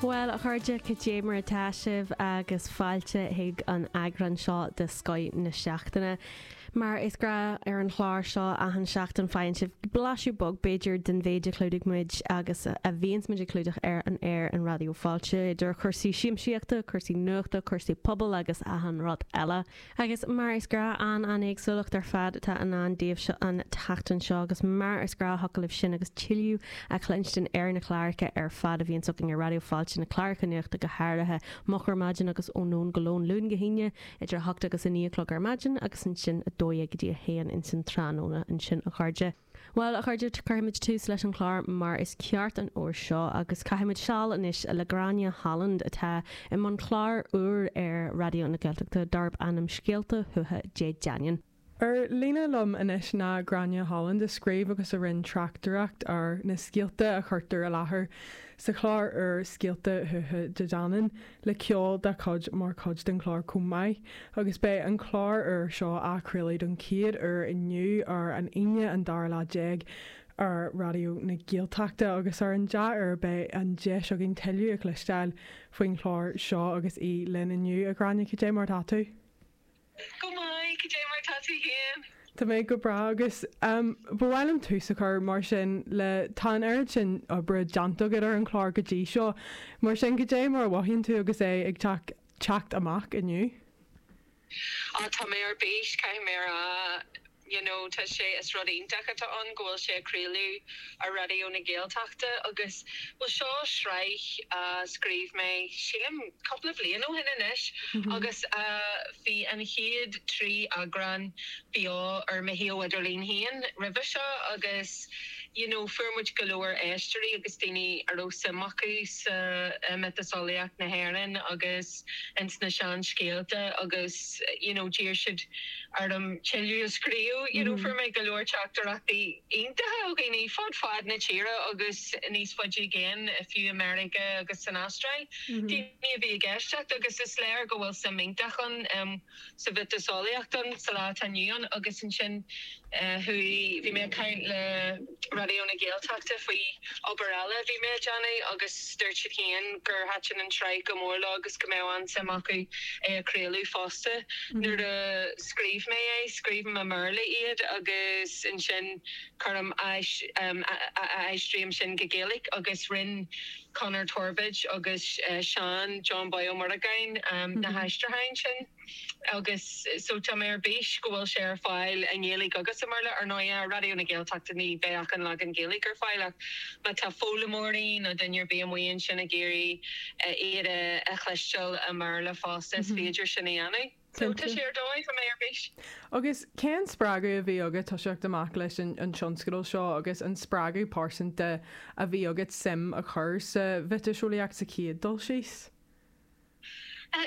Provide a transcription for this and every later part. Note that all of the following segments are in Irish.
Bhuel, a chairde, cad é mar atá sibh agus fáilte chuig an eagrán seo de Scoith na Seachtaine. Mar is gnáth ar an chlár seo, achan seachtain faigheann sibh blaiseadh beag, b'fhéidir, den mhéid a chlúdaigh muid agus a bhíonns muid ag clúdach ar an aer i Raidió Fáilte, idir chúrsaí siamsaíochta, cúrsaí nuachta, cúrsaí pobail agus achan rud eile. Agus mar is gnáth an-an-éagsúlacht ar fad atá i ndán daoibhse an tseachtain seo, agus mar is gnáth thiocfadh libh sin agus tuilleadh a chluinstin ar na cláracha ar fad a bhíonns againn ar Raidió Fáilte, na cláracha nuachta go háirithe, Moch ar Maidin agus Ó Nóin go Lón, Luan go hAoine idir a hocht agus a naoi a chlog ar maidin agus ansin a dó dhéag go dtí a haon insan tráthnóna. Ansin, a chairde. Bhuel, a chairde, cuirfimid tús leis an chlár mar is ceart an uair seo agus caithfimid seal anois le Gráinne Holland atá i mbun cláir úir ar Raidió na Gaeltachta darb ainm Scéalta Thuatha Dé Danann. Ar líne liom anois ná Gráinne Holland a scríobh agus a rinne tráchtaireacht ar na scéalta a chuirtear i láthair sa chlár úr Scéalta Thuatha Dé Danann. le ceol dá cuid mar chuid den chlár chomh maith agus beidh an clár úr seo á chraoladh don chéad uair inniu ar an Aoine an dara lá déag ar Raidió na Gaeltachta agus ar an dea-uair beidh an deis againn tuilleadh a chloisteáil faoin chlár seo agus í linn inniu, a Ghráinne, cad é mar atá tú? Go maith, cad é mar tá tú féin? Tá mé go breá agus ba mhaith liom tús a chur mar sin le tá an oiread sin oibre déanta agat ar an chlár go dtí seo, mar sin cad é mar a mhothaíonn tú agus é ag teacht teacht amach inniu? Á, tá mé ar bís, caithfidh mé a rá. you know tá sé is rud iontach atá ann go bhfuil sé á chraoladh ar Raidió na Gaeltachta agus bhuel seo sraith a scríobh mé sílim cúpla bhliain ó shin anois agus bhí an chéad trí eagrán beo ar mo shuíomh idirlín féin roimhe seo agus you know fuair muid go leor éisteoirí agus daoine a raibh suim acu sa mhiotaseolaíocht na hÉireann agus. ins na seanscéalta agus you know d'iarr siad orm tuilleadh a scríobh you know fuair mé go leor teachtaireachtaí iontacha ó dhaoine ó fud fad na tíre agus níos faide i gcéin fiú i Meiriceá agus san Astráil daoine a bhí ag éisteacht agus is léir go bhfuil suim iontach ann i sa mhiotaseolaíocht insa lá atá inniu ann agus ansin chuaigh, bhí mé ag caint le Raidió na Gaeltachta faoi obair eile a bhí mé a dhéanamh agus dúirt siad féin gur thaitin an tsraith go mór leo agus go mbeadh an-suim acu é a chraoladh fosta. Nuair a scríobh mé é, scríobhaim i mBéarla iad agus ansin cuirim, aistrím sin go Gaeilge agus rinn. Conor Torbóid agus Seán John Bóí Ó Muireagáin na haistriúcháin sin agus so tá mé ar bís go bhfuil sé ar fáil i nGaeilge agus i mBéarla. Ar ndóigh, ar Raidió na Gaeltachta ní bheidh ach an leagan Gaeilge ar fáil ach má tá foghlaimeoirí nó duine ar bith amuigh ansin ag iarraidh iad a chloisteáil i mBéarla fosta is féidir sin a dhéanamh. Cinnte, ar dóigh a bheidh ar. Agus cén spreagadh a bhí agat toiseacht amach leis an an tionscadal seo agus an spreagadh pearsanta a bhí agat suim a chur sa mhiotaseolaíocht sa chéad dul síos?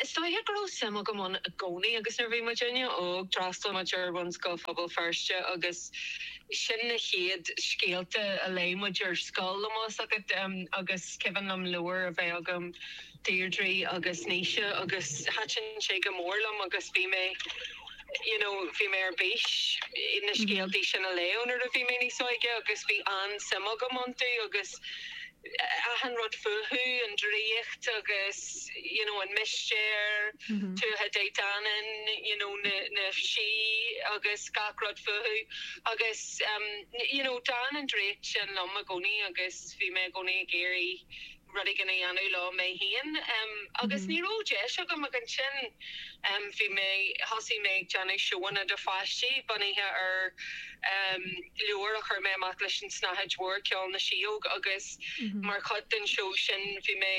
Is dóigh go raibh suim agam ann i gcónaí agus nuair a bhí muidinne óg, d'fhreastal muid ar Bhunscoil Phobal Feirste agus sin na chéad scéalta a léigh muid ar scoil, tá a fhios agat, agus is cuimhin liom leabhar a bheith agam, Deirdre agus Naoise agus thaitin sé go mór liom agus bhí mé you know bhí mé ar bís na scéaltaí sin a léamh nuair a bhí mé níos óige agus bhí an-suim agam iontu agus achan rud fúthu, an draíocht agus you know, an mistéir, Tuatha Dé Danann, you know, na, na sí agus gach rud fúthu agus um, you know, d'fhan an draíocht sin liom i gcónaí agus bhí mé i gcónaí ag iarraidh rud éigin a dhéanamh leo mé féin agus ní raibh deis agam ach ansin bhí mé thosaigh mé ag déanamh seóanna do pháistí bunaithe ar leabhar a chuir mé amach leis an tSnáthaid Mhór, Ceol na Síóg agus mar chuid den seó sin bhí mé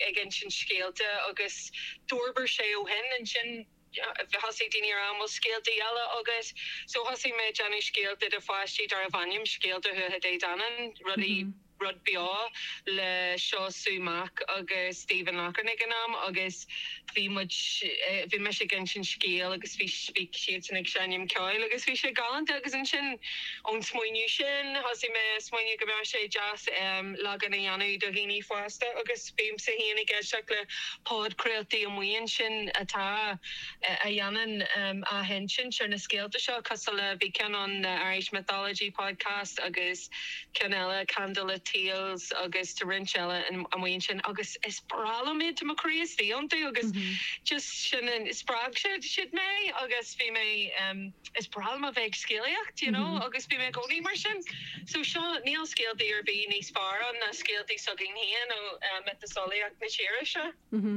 ag insint scéalta agus d'fhorbair sé ó shin. Ansin. thosaigh daoine ar mhaith leat scéalta eile agus so thosaigh mé ag déanamh scéalta do pháistí darbh ainm Scéalta Thuatha Dé Danann, rudaí, rud beo le Siú Mac agus Stephen Loughran ag an am agus bhí muid, bhí mise ag insint scéal agus bhí, bhí siadsan ag seinm ceoil agus bhí sé galánta agus ansin ón smaoineamh sin thosaigh mé ag smaoineamh go mbeadh sé deas leagan a dhéanamh do dhaoine fásta agus. Bímse féin ag éisteacht le podchraoltaí amuigh ansin atá, a dhéanann athinsint ar na scéalta seo, cosúil le, bhí ceann ann, The Irish Mythology Podcast agus ceann eile, Candlelit Tales agus tá roinnt eile amuigh ansin agus is breá liom iad, tá mo chroí istigh iontu agus just sin, spreag siad mé agus bhí mé, is breá liom a bheith ag scéalaíocht you know agus bhí mé i gcónaí mar sin. So seo, níl scéaltaí ar bith níos fearr ann ná scéaltaí s'againn féin ó mhiotaseolaíocht na tíre seo.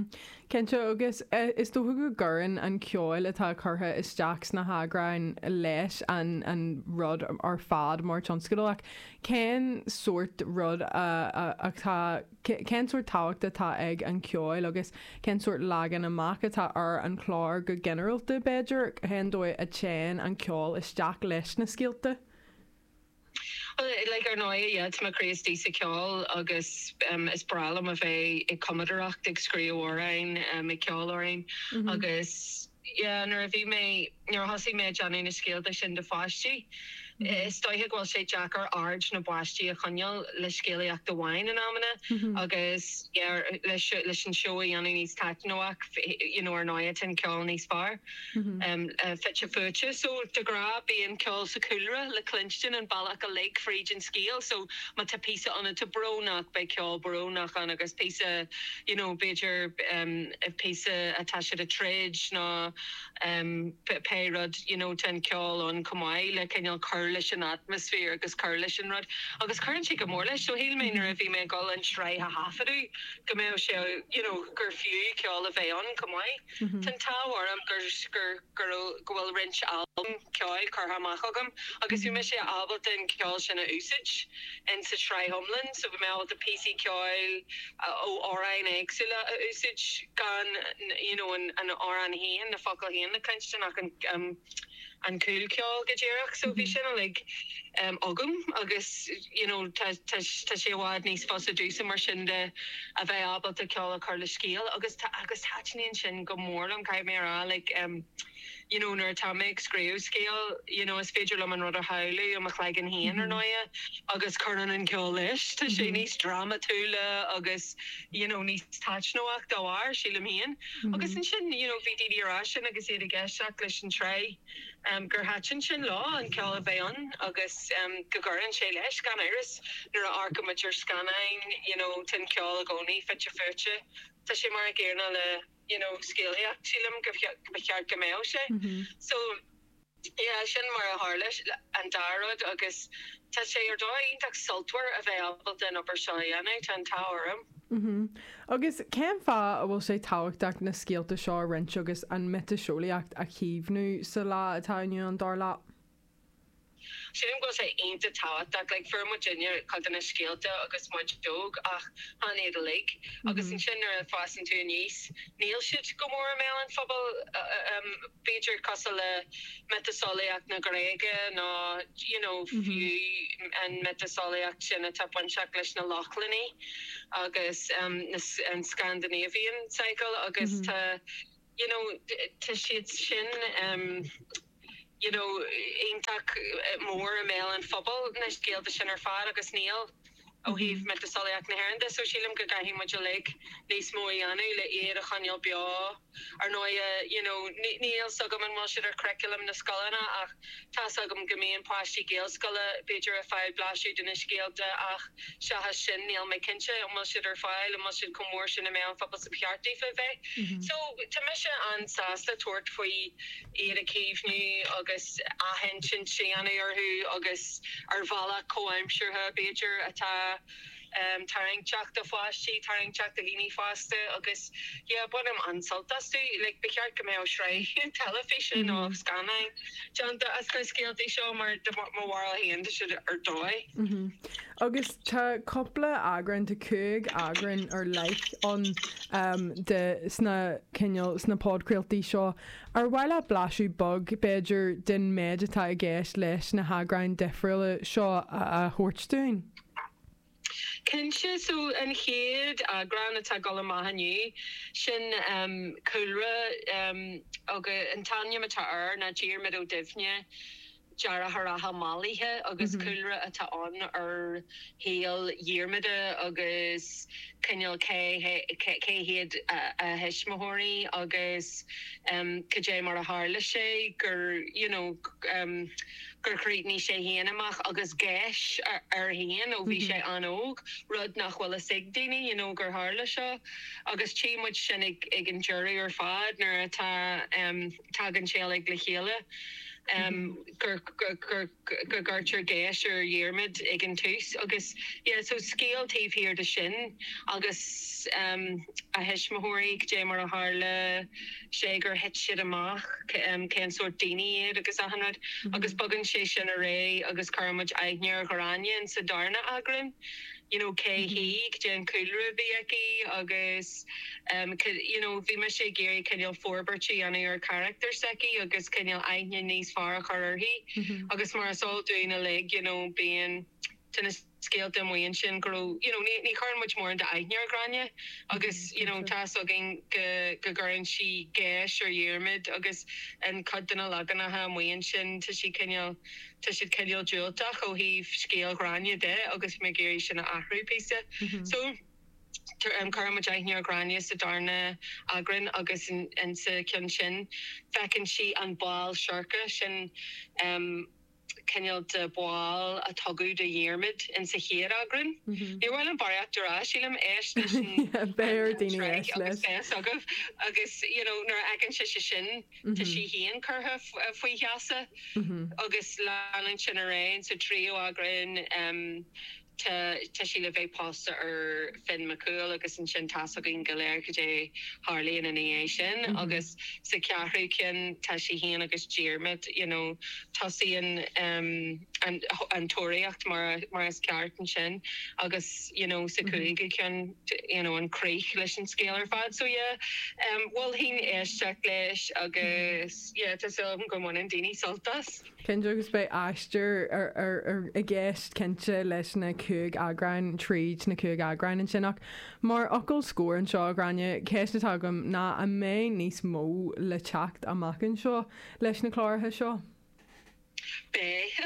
Cinnte, agus is dócha go gcuireann an ceol atá curtha isteach sna heagráin leis an rud ar fad mar tionscadal ach cén sórt rud atá, cén sórt tábhacht atá ag an cheol agus cén sórt leagan amach atá ar an chlár go ginearálta b'fhéidir, cén dóigh a dtéann an ceol isteach leis na scéalta? Like, ar ndóigh, yeah, tá mo chroí istigh sa cheol agus is breá liom a bheith ag cumadaireacht, ag scríobh amhráin, ag ceol amhráin agus, yeah, nuair a bhí mé, nuair a thosaigh mé ag déanamh na scéalta sin do pháistí, is dóiche go bhfuil sé deacair aird na bpáistí a choinneáil le scéalaíocht amháin in amanna agus, yeah, leis an seó a dhéanamh níos taitneamhach, you know, ar ndóighe, déanann ceol níos fearr. fite fuaite. So de ghnáth bíonn ceol sa chúlra le cluinstin an bealach uilig fríd an scéal. So má tá píosa ann atá brónach beidh ceol brónach ann agus píosa you know b'fhéidir píosa atá siad ag troid nó pé rud you know tá an ceol ann chomh maith le cineál cur leis an atmaisféar agus cur leis an rud agus cuireann sé go mór leis. So shíl mé nuair a bhí mé ag dul an tsraith a thaifeadadh go mbeadh sé you know gur fiú ceol a bheith ann chomh maith. Tá an t-ádh orm go bhfuil roinnt albam ceoil curtha amach agam agus bhí mise ábalta an ceol sin a úsáid in sa tsraith iomlan so bhí mé ábalta píosaí ceoil ó amhráin éagsúla a úsáid gan you know an t-amhrán féin, na focail féin a chluinstin ach an. an cúl ceoil go díreach so bhí sin uilig agam agus you know tá tá tá sé i bhfad níos fusa domhsa mar sin de a bheith ábalta ceol a chur le scéal agus tá agus thaitníonn sin go mór liom caithfidh mé a rá like em you know nuair atá mé ag scríobh scéal you know is féidir liom an rud a shamhlú i mo chloigeann féin ar ndóighe agus cuireann an ceol leis tá sé níos drámatúla agus you know níos taitneamhach dá bharr sílim féin. Agus ansin, you know, bhí daoine ag rá sin agus iad ag éisteacht leis an tsraith gur thaitin sin leo, an ceol a bheith ann agus go gcuireann sé leis. Gan amhras, nuair a amharcann muid ar scannáin, you know, tá an ceol i gcónaí fite fuaite. Tá sé mar an gcéanna le, you know, scéalaíocht, sílim go, go, ba cheart go mbeadh sé. So. Is é sin mar a tharla an dá rud agus tá sé ar dóigh iontach sultmhar a bheith ábalta an obair seo a dhéanamh, tá an t-ádh orm. Agus cén fáth a bhfuil sé tábhachtach na scéalta seo a roinnt agus an mhiotaseolaíocht a chaomhnú sa lá atá inniu ann, dar leat? Sílim go bhfuil sé iontach tábhachtach. Fuair muidinne cuid de na scéalta agus muid óg ach chan iad uilig agus ansin nuair a fhásann tú aníos níl siad go mór i mbéal an phobail. b'fhéidir cosúil le miotaseolaíocht na Gréige nó you know fiú an mhiotaseolaíocht sin atá bainteach leis na Lochlannaigh agus an Scandinavian cycle agus tá you know tá siad sin you know iontach mór i mbéal an phobail na scéalta sin ar fad agus níl. ó thaobh mhiotaseolaíocht na hÉireann de so sílim go gcaithfidh muid uilig níos mó a dhéanamh le iad a choinneáil beo. Ar ndóighe, you know, ní ní fhios agam an bhfuil siad ar churriculum na scoileanna ach tá's agam go mbíonn páistí Gaelscoile b'fhéidir ag fáil blaiseadh de na scéalta ach seachas sin níl mé cinnte an bhfuil siad ar fáil, an bhfuil siad chomh mór sin i meon an phobail is ba cheart daofa bheith. So tá mise an-sásta tabhairt faoi. iad a chaomhnú agus athinsint a dhéanamh orthu agus ar bhealach comhaimseartha, b'fhéidir, atá tarraingteach do pháistí, tarraingteach do dhaoine fásta agus yeah bainim an-sult astu. Like ba cheart go mbeadh sraith teilifíse nó scannáin déanta as na scéaltaí seo mar i mo bharúil féin tá siad ar dóigh. Agus tá cúpla eagrán, tá cúig eagrán ar leith ann de sna cineál, sna podchraoltaí seo. Ar mhaith leat blaiseadh beag, b'fhéidir, den méid atá i gceist leis na heagráin difriúla seo a thabhairt dúinn? Cinnte, so an chéad eagrán atá ag dul amach inniu, sin Cúlra agus an t-ainm atá air ná Diarmuid Ó Duibhne, deartháireacha mallaithe agus cúlra atá ann ar shaol Dhiarmada agus cineál cé hiad a thuismitheoirí agus cad é mar a tharla sé gur you know gur chríochnaigh sé féin amach agus geis air féin ó bhí sé an-óg, rud nach bhfuil a fhios ag daoine you know gur tharla seo agus tchí muid sin ag an deireadh ar fad nuair atá. tagann sé uilig le chéile, gur cuireadh geis ar Dhiarmaid ag an tús agus yeah so scéal taobh thiar de sin agus a thuismitheoirí, goidé mar a tharla sé gur thit siad amach, cén sórt daoine iad agus achan rud agus bogann sé sin ar aghaidh agus cuirfidh muid aithne ar Ghráinne insa darna eagrán. you know cé hí, goidé an cúlra a bhí aici agus em you know bhí mise ag iarraidh cineál forbairt a dhéanamh ar charachtar s'aici agus cineál aithne níos fearr a chur uirthi agus mar is eol dúinn uilig you know bíonn tá na scéalta amuigh ansin go raibh you know ní chuireann muid mórán d'aithne ar Ghráinne agus you know tá's againn go go gcuireann sí geis ar Dhiarmaid agus i gcuid de na leaganacha amuigh ansin tá sí cineál tá siad cineál diúltach ó thaobh scéal Ghráinne de agus mé ag iarraidh sin a athrú píosa. So, cuireann muid aithne ar Ghráinne sa darna eagrán agus insa cheann sin feiceann sí an ball seirce sin, cineál de bhall a tugadh do Dhiarmaid insa chéad eagrán. Níor mhaith liom barraíocht a rá, sílim, éist leis an phod agus beidh a fhios agaibh agus, you know, nuair a fheiceann sise sin, tá sí féin curtha faoi gheasa agus leanann sin ar aghaidh. Sa tríú eagrán tá sí le bheith pósta ar Fionn Mac Cumhaill agus ansin tá's againn go léir cad é a tharlaíonn ina dhiaidh sin agus sa cheathrú ceann tá sí féin agus Diarmaid you know tosaíonn. an tóraíocht mar is ceart ansin agus you know sa chúigiú ceann you know an críoch leis an scéal ar fad so yeah em mholfainn éisteacht leis agus yeah tá súil agam go mbaineann daoine sult as. Cinnte agus beidh aistear i gceist cinnte leis na cúig eagráin tríd na cúig eagráin ansin ach mar fhocal scór anseo a Ghráinne ceist atá agam ná an mbeidh níos mó le teacht amach anseo leis na cláracha seo? Beidh,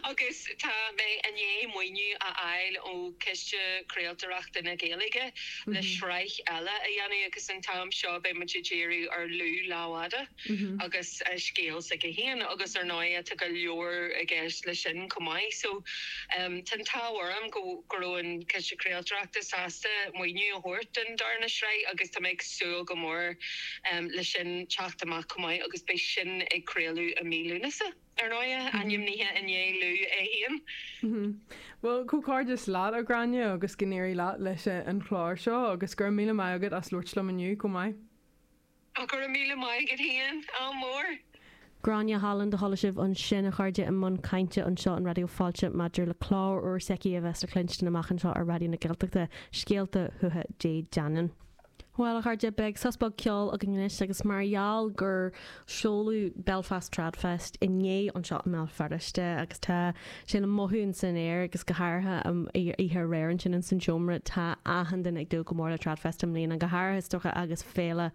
agus tá mé i ndiaidh maoiniú a fháil ó Chiste Craoltóireachta na Gaeilge le sraith eile a dhéanamh agus an t-am seo beidh muid ag díriú ar Lú Lámhfhada agus a scéal s'aige féin agus ar ndóigh tá go leor i gceist leis sin chomh maith so tá an t-ádh orm go go raibh an Ciste Craoltóireachta sásta maoiniú a thabhairt don darna sraith agus tá mé ag súil go mór leis sin teacht amach chomh maith agus beidh sin á chraoladh i mí Lúnasa. Ar ndóigh, ainmnithe i ndiaidh Lú é féin. Bhuel, comhghairdeas leat, a Ghráinne, agus go n-éirí leat leis an chlár seo, agus go raibh míle maith agat as labhairt liom inniu chomh maith. Ach go raibh míle maith agat féin, ádh mór! Gráinne Holland a chuala sibh ansin, a chairde, i mbun cainte anseo ar Raidió Fáilte maidir le clár úr s'aici a bheas le cluinstin amach anseo ar Raidió na Gaeltachta, Scéalta Thuatha Dé Danann. Bhuel, a chairde, beidh sos beag ceoil againn anois agus mar gheall gur seoladh Belfast Tradfest inné anseo i mBéal Feirste agus tá sé le mothú in san aer agus go háirithe oíche aréir ansin in san seomra, tá achan duine ag dúil go mór le Tradfest i mbliana, go háirithe is dócha agus féile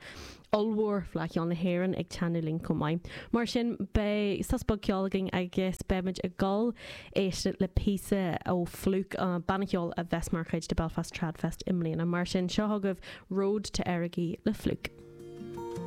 ollmhór Fleadh Cheoil na hÉireann ag teannadh linn chomh maith. Mar sin, beidh sos beag ceoil againn agus beimid ag dul éisteacht le píosa ó Flook, an banna ceoil a bheas mar chuid de Belfast Tradfest i mbliana. Mar sin, seo chugaibh Road to Errigal le Flook.